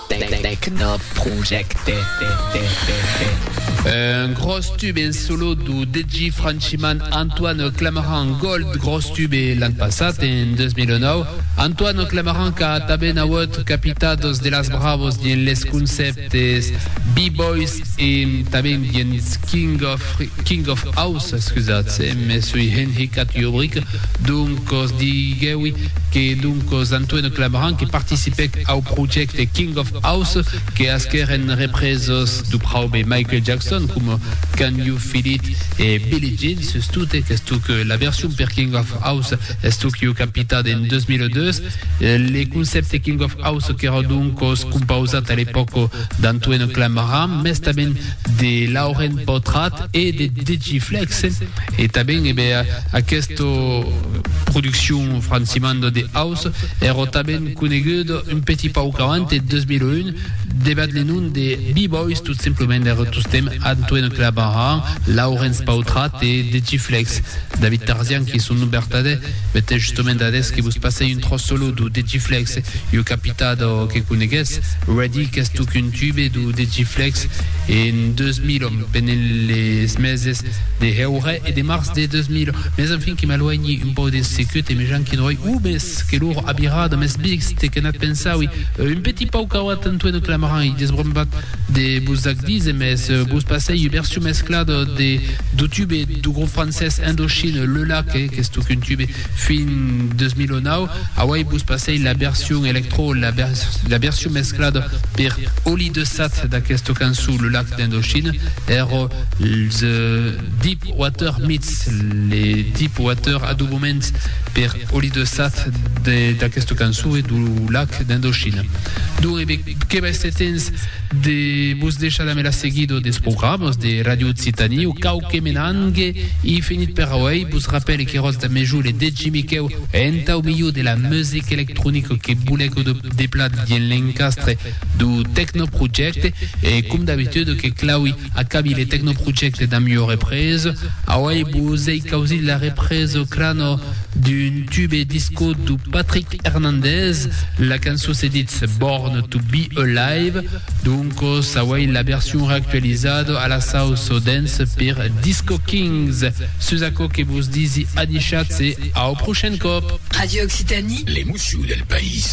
Tecnoprojecte Un gròs tube en solo do DJ franchiman Antoine Clamaran Gold gròs tube l'an passat en 2009 Antoine Clamaran qu'a tanben auut capitados de las bravos dins les concèptes B-boys e tanben dins King of King of House excusatz me sui enhicat jo bric Doncos, diguèwi que doncos Antoine Clabrant que participèc au projècte King of House que asquèren represos du praube Michael Jackson coma Can You Feel It e Billie Jean, sustot qu'estuc la version per King of House estuc ieu capitat en 2002. Le concèpte King of House qu'èra doncos compausat a l'epòca d'Antoine Clabrant, mès tanben de Lauren Potrat e de Digiflex e tanben ebe aquesta produccion francimanda de house èra tanben coneguda un petit pauc avant e 2001 debat le nom de B-Boys tot simplement èra tostemp Antoine Clabaran, Laurens Pautrat e Digiflex, David Tarzian qui son nom vertadèr Bèth, e justement d'ades que vos passèi un tròç solo d'o degiflex, ua capità d'o que conegues, ready, qu'es tòc un tube d'o degiflex, e en deus mil òm, pendent les meses de heure e de març de deus mil, mès enfin que m'aluenhi un pauc deth secut e me janqui droi uu mes que lor abirada, mes vist que n'ath pensaui, un petit pauc cauat en tueno clamaran i desbrombat de vos ac díser, mès vos passèi ua version mesclada de d'o tube du grop francés Indochine, Le Lac, que qu'es tocun tube fin 2009. Auei vos passei la version electro, la, la version mesclada per Oli de Sat d'aquesta cançon Le Lac d'Indochine, er The Deep Water Meets, le Deep Water adobament per Oli de Sat d'aquesta cançon e du Lac d'Indochine. Donc, e que vai setens de vos deishar damb era seguida des programas de Ràdio Occitània o cau que me n'angue, e finit per auei, vos rapèle que Ròtz da Mejol e Degi Miquèu entau milhor de la musica electronica que bolèc o de plat vien l'encastre dau Tecnoprojecte e com d'abitude que Claui acabi le Tecnoprojecte damb ua represa auei vos ei causit la represa Crano d'un tube disco dau Patrick Hernandez, la cançon se ditz Born to be Alive, doncos auei la version reactualizada a la sauce au dance per Disco Kings. Sus aquò que vos disi adishatz e au prochain còp! Radio Occitanie. L'emocion del país.